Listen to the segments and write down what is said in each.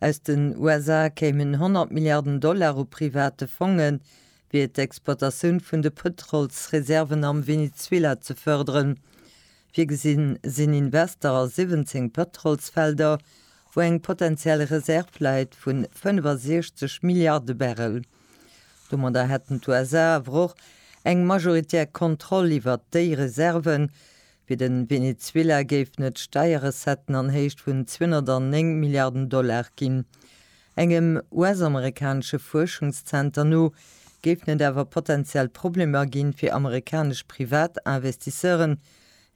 Aus den USA kéimen 100 Milliarden Dollar u private Fongen, fir d'Exploitatioun vun de Pëtrolsreserven am Venezuela ze fërderen. Virgesinn sinn Invester a 17 Pëtrolsfelder, wou eng potentiell Reserv läit vu 65 Milliarde Barrel. Domadder hätten d'USA awer och eng majoritär Kontroll iwwert déi Reserven, Fir de Venezuela géifen et Steierrecetten an Héicht vun 209 Milliarden Dollar ginn. Engem US-amerikanesche Fuerschungszenter no géifen et awer potenziell Problemer gi fir amerikanesch Privatinvestisseuren.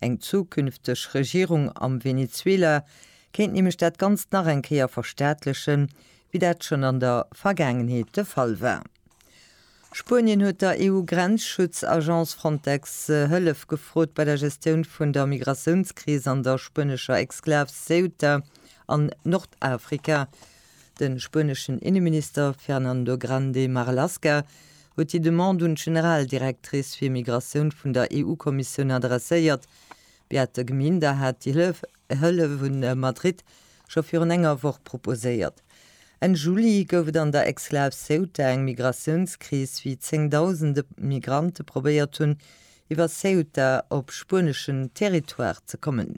Eng zukünfteg Regierung am Venezuela kéint nämlech dat Ganzt nach eng Kéier verstaatlechen, wéi dat schonn an der Vergaangenheet de Fall war. Spuenien huet der EU-Grenzschutz-Agence Frontex Hëllef gefrot bei der Gestioun vun der Migratiounskris an der spuenescher Exklav Ceuta an Nordafrika. De spueneschen Inneminister Fernando Grande Marlaska huet déi Demande un d'Generaldirectrice fir Migratioun vun der EU-Kommissioun adresséiert. Beate Gminder hat déi Hëllef Hëllef hu Madrid scho virun enger Woch proposéiert. Enn Juli gouf et an der Exklav Ceuta eng Migratiounskris, wéi zéngdausende Migrante probéiert hunn, iwwer Ceuta op spueneschen Territoire ze kommen.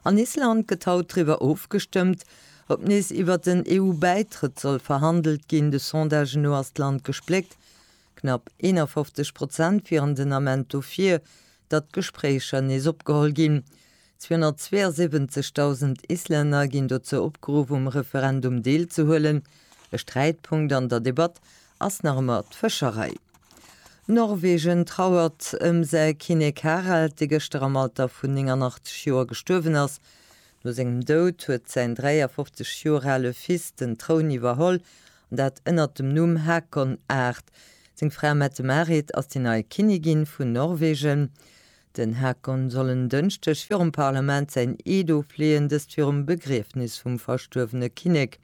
An Island gëtt haut driwwer ofgestëmmt, ob nees iwwer den EU-Bäitrëtt soll verhandelt ginn. De Sondage no ass d'Land gespléckt. Knapp 51 Prozent wieren den Ament dofir, datt d'Gespréicher nees opgeholl ginn. 272.000 Islänner ginn dozou opgeruff, um Referendum deelzehuelen. E Sträitpunkt an der Debatt ass nach ëmmer d'Fëscherei. Norwegen trauert ëm säi Kinnek Harald, dee gëschter am Alter vun 89 Joer gestuerwen ass. No sengem Doud huet säin 53 Joer ale Fils den Troun iwwerholl An dat ënnert dem Numm Haakon Art. Seng Fra Mette-Marit ass déi nei Kinnigin vun Norwegen. Den Haakon soll en Dënschdeg virum Parlament säin Eed ofleeën, dëst virum Begriefnis vum verstuerwene Kinnek.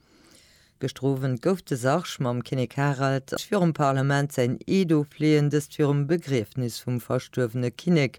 Gëschter Owend gouf de Sarg mam Kinnek Harald virum Parlament säin Eed ofleeën, dëst virum Begriefnis vum verstuerwene Kinnek.